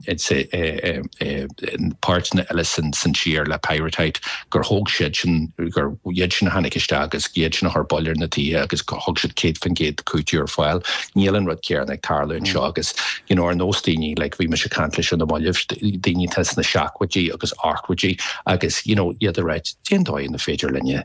is é páirteanna eile san tír le pyrrhotite gur thóg siad sin, gur iad sin a tháinig isteach agus iad sin a chuir bail ar na tithe agus gur thug siad 100% cúiteamh ar fáil. Níl an rud céanna ag tarlú anseo agus you know ar nós daoine like bhí mise ag caint leis ar na mallaibh, daoine atá sna seachtóidí agus ochtóidí agus you know iad a rá cén dóigh an féidir linne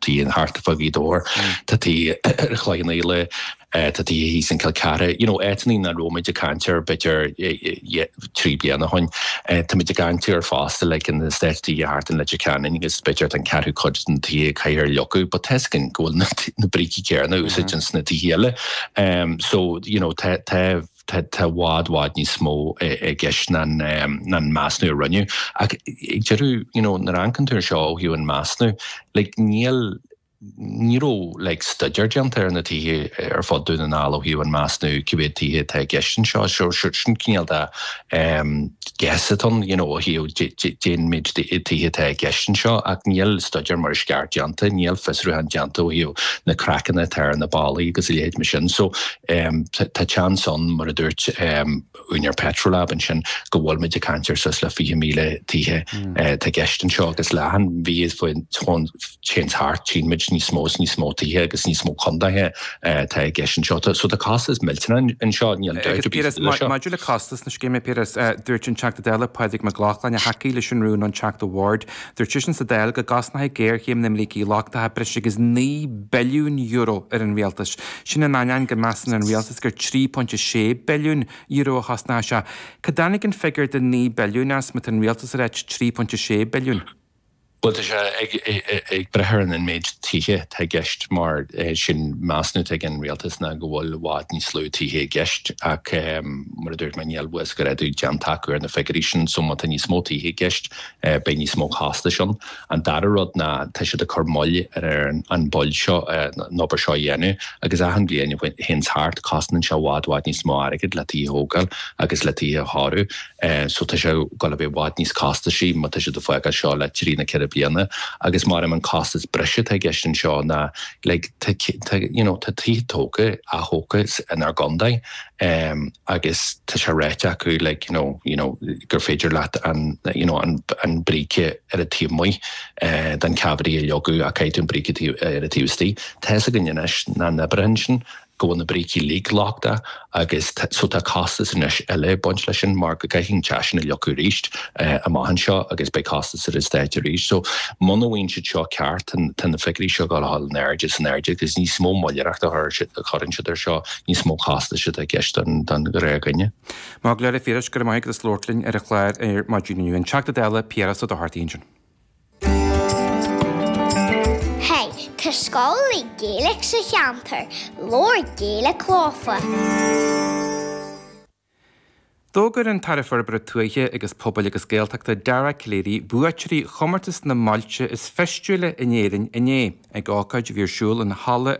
tithe thart fá Ghaoth Dobhair, tá tithe i gCloich Cheann Fhaola, tá tithe thíos in Cill Chartha, you know, áiteannaí nach raibh muid ag caint air b'fhéidir trí bliana ó shoin. Tá muid ag caint air fosta like eastát tithe thart in Leitir Ceanainn agus b'fhéidir tá an ceathrú cuid de na tithe a chaithfear a leagadh but tá 'fhios againn go bhfuil na brící céarna úsáidte ins na tithe eile. So, you know, tá, tá, Tá i bhfad, bhfad níos mó i gceist ná an measnú a rinneadh. Ach ag deireadh, you know, nuair a amharcann tú air seo ó thaobh an measnú, like, níl, ní raibh, like, stuidéar déanta ar na tithe ar fud Dún na nGall ó thaobh an measnú cé mhéad tithe atá i gceist anseo. So, sure, sin cineál de, em, guess atá ann, you know, ó thaobh dé, dé, dén méid de tithe atá i gceist anseo. Ach níl stuidéar mar is ceart déanta, níl fiosrúchán déanta ó thaobh na craiceanna atá ar na ballaí agus a leithéid mar sin. So, Tá seans ann, mar a dúirt úinéir Petrolab ansin, go bhfuil muid ag caint ar suas le 20,000 tithe atá i gceist anseo, agus le achan mhí a théann thart tchíonn muid níos mó is níos mó tithe agus níos mó contaetha atá i gceist anseo. So tá costas millteanach anseo, níl dabht ar bith faoi sin. Agus maidir le costas na scéime, Pearse, dúirt an Teachta Dála Pádraig Mac Lochlainn, a thacaigh leis an rún, an Teachta Ward, Dúirt seisean sa Dáil go gcosnódh géarchéim na mbrící lochtacha breis agus €9 billiún ar an rialtas. Sin in ainneoin go measann an rialtas gur €3.6 billiún a chosnódh sé. Cá dtáinig an figiúr de €9 billiún as má tá an rialtas ag ráit €3.6 billiún? Bhuel, tá sé ag brath ar an méid tithe atá i gceist mar sin measúnú atá ag an rialtas ná go bhfuil i bhfad níos lú tithe i gceist ach mar a dúirt mé níl uasghrádú déanta acu ar na figiúirí sin so má tá níos mó tithe i gceist Beidh níos mó costais ann. An dara rud ná tá siad ag cur moill ar an bhail seo, an obair seo a dhéanamh, agus achan bhliain a théanns thart, cosnaíonn sé i bhfad, bhfad níos mó airgid le tithe a thógáil agus le tithe a chóiriú. So tá sé ag dul a bheith i bhfad níos costaisí má tá siad ag fágáil seo le trí nó ceithre bliana. Agus mairim an costas breise atá i gceist anseo ná like tá, you know, tá tithe tógtha, atógtha inár gcontae. Um, agus tá sé ráite acu, like, you know, you know, gur féidir leat an, you know, an, an bríce ar an taobh amuigh, eh, den cavity a leagadh, ach caithfidh tú an bríce taobh, eh, ar an taobh istigh. Tá a fhios againne anois, nach n-oibreoidh sin, go bhfuil na brící uilig lochtach, agus tá, so tá costas anois eile ag baint leis sin, mar go gcaithfidh an teach sin a leagadh arís, eh, amach anseo, agus beidh costas ar an Stát arís. So, muna bhfaigheann siad seo ceart, tá, tá na figiúirí seo ag dul a dhul in airde is in airde, agus níos mó moilleadóireachta a chuireann siad, a chuireann siad air seo, níos mó costais atá i gceist don Ghaeilge ná mBéarla. A Phiarais, go raibh maith agat as labhairt linn ar an chlár ar maidin. An Teachta Dála Piaras Ó Dochartaigh ansin. Hey, tá scoil le Gaeilge sa cheantar, labhair Gaeilge leofa! D'fhógair an tAire Forbartha Tuaithe agus Pobail agus Gaeltachta Dara Calleary buaiteoirí chomórtas na mBailte is Feistiúla in Éirinn inné, ag ócáid a bhí ar siúl in Halla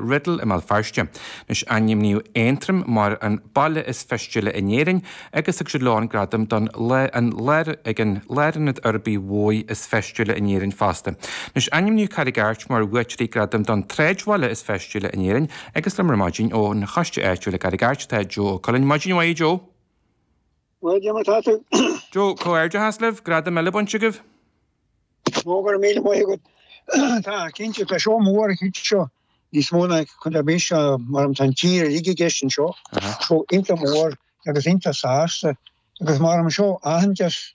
Riddle i mBéal Feirste. Anois ainmníodh Aontroim mar an Baile is Feistiúla in Éirinn agus thug siad leo an gradam don ag an Lárionad Uirbeach Mór is Feistiúla in Éirinn fosta. Anois ainmníodh Carraig Airt mar bhuaiteoirí gradaim don tSráidbhaile is Feistiúla in Éirinn, Agus liom ar maidin ó choiste áitiúil i gCarraig Airt atá Joe Ó Cuilinn. Maidin mhaith, Joe. Maidin mhaith, cad é mar atá tú. Joe, comhghairdeas libh. Gradam eile bainte agaibh. Go raibh míle maith agat. Tá, cinnte, tá seo mór, tá seo níos mó ná ceann ar bith seo mar tá an tír uilig i gceist anseo. So iontach mór agus iontach sásta agus mar seo aitheantas